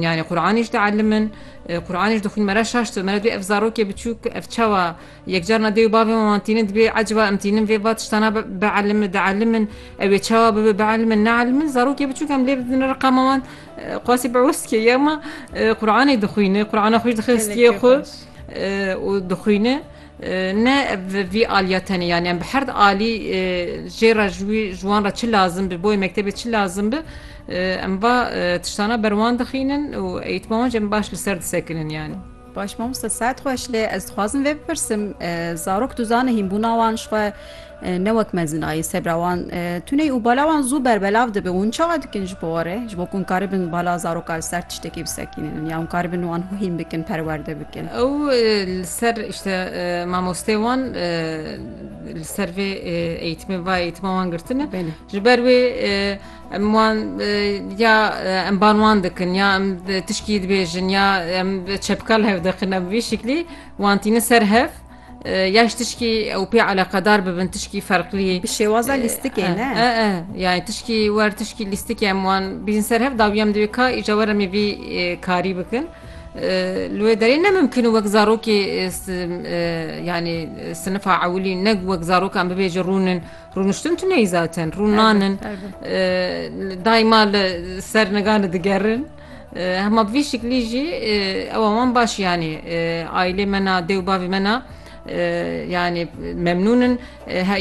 Yanî Quranî ji tielim in, Quranî ji dixwîn me re şaş dibe. Me re dibê ev zarokê biçûk ev çawa yek car na dê û bavê me wan tînin dibê eciba em tînin vê va tiştana bielim in, dielim in, ew ê çawa bibe bielim in, neelim in. Zarokê biçûk em lê bidin riqa me wan qasî bi wis dike ya ma Quranî dixwîne, Qurana xwe jî dixe stiyê xwe û dixwîne. Ne bi vî aliya tenê yanî em bi herd alî jê re ji wî ji wan re çi lazim bi bo yê mektebê çi lazim bi em va tiştana ber wan dixînin û eîtma wan jî em baş li ser disekinin yanî. Baş mamoste saet xweş lê ez dixwazim vê bipirsim zarok tu zanê hînbûna wan ji xwe Ne wek mezinayî, sebra wan tune û bala wan zû berbelav dibe û hûn çawa dikin ji bo warê? Ji bo ku hûn karibin bala zaroka li ser tiştekî bisekînin ya hûn karibin wan hîn bikin, perwerde bikin. Ew li ser îşte mamosteyê wan li ser vê eğîtimê va eğîtima wan girtine. Ji ber wê em wan ya em ban wan dikin ya em tişkî dibêjin ya em çepika li hev dikin em bi vî şiklî wan tînin ser hev. Ya ji tişkî ew pê eleqedar bibin tişkî ferqlî. Bi şêwaza lîstikê ne? E e yani tişkî wer tişkî lîstikê em wan bîjin ser hev dawî em divê ka îca were me vî karî bikin. Li wê derê ne mimkin û wek zarokê yani sinifa ewilî ne wek zarok em bibêje rûnin rûniştin tu neyî zaten rûn nanin dayma li ser niga li digerin. Hema bi vî şiklî jî ewa wan baş yanî aîlê me na dê û bavê me na yanî memnûn in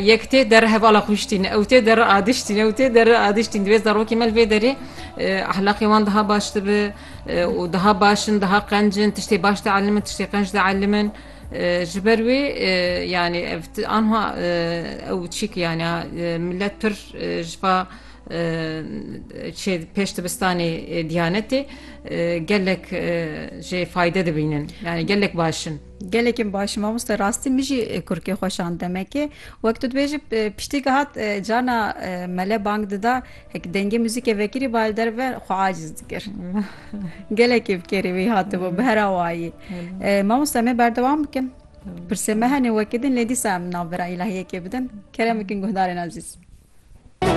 yek tê der hevala xwiştîn ew tê der adiştîn ew tê der adiştîn divê zarokê me li vê derê ehlaqê wan daha baş dibe û daha baş in daha qenc in tiştê baş de elimin tiştê qenc de elimin ji ber wê yanî ev anha ew çîk yanî milet pir ji va Çê pêş dibistanê Diyanetê gelek jê fayde dibînin yani gelek baş in. Gelekên baş in mamoste rastî min jî kurkê xwe şand demekê wek tu dibêjî piştî gihat carna mele bang dida hek dengê muzîkê vekirî ba li derve xwe aciz dikir gelekî bi kêrê wî hatibû bi her awayî mamoste em ê berdewam bikin pirsê me hene wekî din lê dîsa em navbera îlahiyekê bidin kerem bikin guhdarên ezîz.